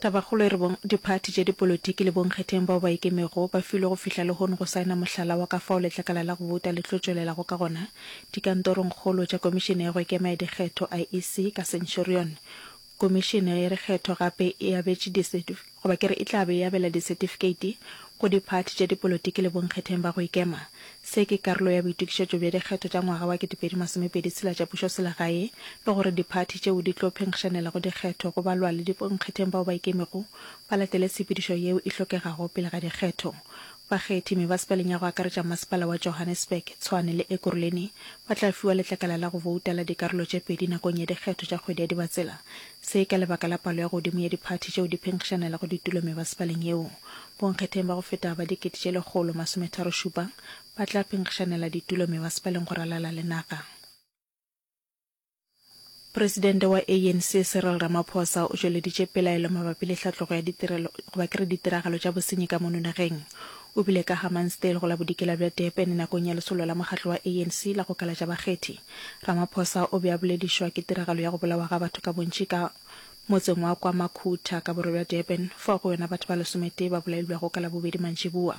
Tabakgolo e re bong diphathi tše dipolotiki le bonkgetheng bao ba ikemego ba filwe go fihla lehono go saena mohlala wa ka fao letlakala la go bouta le tlo tšwelelago ka gona dikantorongkgolo tša Komišene ya go Ikema ya Dikgetho, IEC, ka Centurion. Komišene ya Dikgetho gape e abetše disetif, goba ke re e tla be e abela disetifikeiti, go diphathi tša dipolotiki le bonkgetheng ba go ikema. Se ke karolo ya boitokišetšo bja dikgetho tša ngwaga wa kete pedi masomepedi tshela tša pušoselegae le gore diphathi tšeo di tlo phenkgišanela go dikgetho go balwa le dibonkgetheng bao ba ikemego ba latele tshepedišo yeo e hlokegago pele ga dikgetho Bakgethi mebasepaleng ya go akaretša Masepala wa Johannesburg, Tshwane le Ekurhuleni ba tla fiwa letlakala la go bouta la dikarolo tše pedi nakong ya dikgetho tša kgwedi ya Dibatsela. Se ka lebaka la palo ya godimo ya diphathi tšeo di phenkgišanelago ditulo mebasepaleng yeo. Bonkgetheng ba go feta ba dikete tše lekgolo masometharo šupa ba tla phenkgišanela ditulo mebasepaleng go ralala le naga. Presidente wa ANC Cyril Ramaphosa o tšweleditše pelaelo mabapi le hlatlogo ya ditirelo goba ke re ditiragalo tša bosenyi ka mono nageng. O bile ka Hammansdale go la bodikela bja Durban nakong ya lesolo la mokgatlo wa ANC la go kalatša bakgethi. Ramaphosa o be a boledišwa ke tiragalo ya go bolawa ga batho ka bontši ka motseng wa kwa Makhutha ka borwa bja Durban fao go yona batho ba lesometee ba bolailwego ka Labobedi mantšiboa.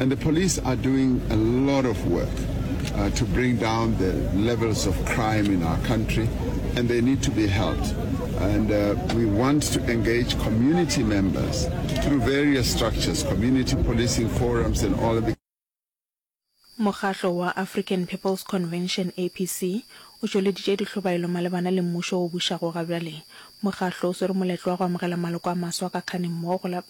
And the police are doing a lot of work uh, to bring down the levels of crime in our country, and they need to be helped. And uh, we want to engage community members through various structures, community policing forums, and all of the. Mokgatlo wa African People's Convention, APC, o tšweleditše dihlobaelo malebana le mmušo o bušago ga bjale. Mokgatlo o swere moletlo wa go amogela maloko a maswa ka kganeng mmogo go la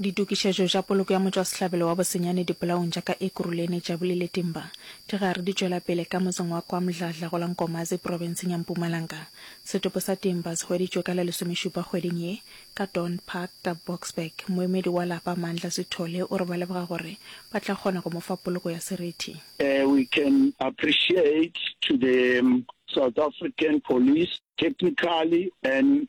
Ditokišetšo tša poloko ya motšwasehlabelo wa Bosenyane Dipolaong tša ka Ekurhuleni, Jabuli le Timba di gare di tšwela pele ka motseng wa KwaMdladla go la Nkomazi profenseng ya Mpumalanga. Setopo sa Timba se hweditšwe ka la lesomešupa kgweding ye ka Dawn Park ka Boksburg. Moemedi wa lapa Mandla Sithole o re ba leboga gore ba tla kgona go mo fa poloko ya serithi. We can appreciate to the South African Police technically and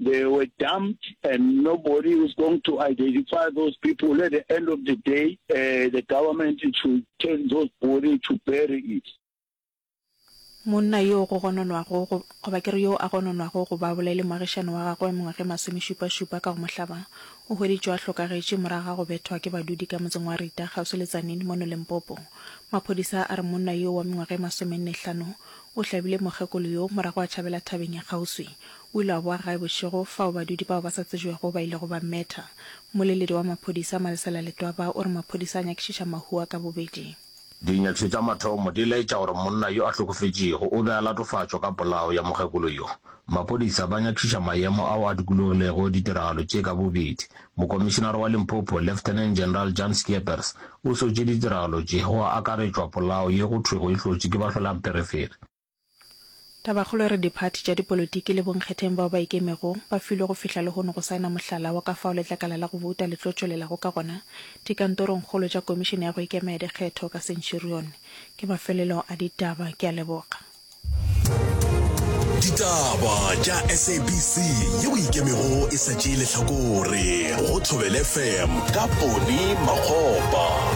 They were dumped and nobody is going to identify those people at the end of the day uh, the government should take those body to bury it. Monna yo go gononwago go, goba ke re yo a gononwago go ba bolaile moagišani wa gagwe mengwageng masomešupašupa ka go mo hlaba, o hweditšwe a hlokagetše morago ga go bethwa ke badudi ka motseng wa Rita kgauswi le Tzaneen mono Limpopo. Maphodisa a re monna yo wa mengwageng masomenne hlano o hlabile mokgekolo yo morago a tšhabela thabeng ya kgauswi. O ile a boa gae bošego, fao badudi bao ba sa tsejwego ba ilego ba mmetha. Mmoleledi wa maphodisa, Malesela Letwaba, o re maphodisa a nyakišiša mahu a ka bobedi. Dinyakišo tša mathomo di laetša gore monna yo a hlokofetšego o be a latofatšwa ka polao ya mokgekolo yo. Maphodisa ba nyakišiša maemo ao a dikologilego ditiragalo tše ka bobedi. Mokomišinare wa Limpopo, Lieutenant General Jan Scheepers, o sotše ditiragalo tše, go akaretšwa polao ye go thwego e hlotšwe ke bahlolampherefere. Tabakgolo e re diphathi tša dipolotiki le bonkgetheng bao ba ikemego ba filwe go fihla lehono go saena mohlala wa ka fao letlakala la go bouta le tlo tšwelelago ka gona dikantorongkgolo tša Komišene ya go Ikema ya Dikgetho ka Centurion. Ke mafelelo a ditaba. Ke a leboga. Ditaba tša SABC ye boikemego e sa tšee lehlakore go Thobel FM ka Pone Makgopa.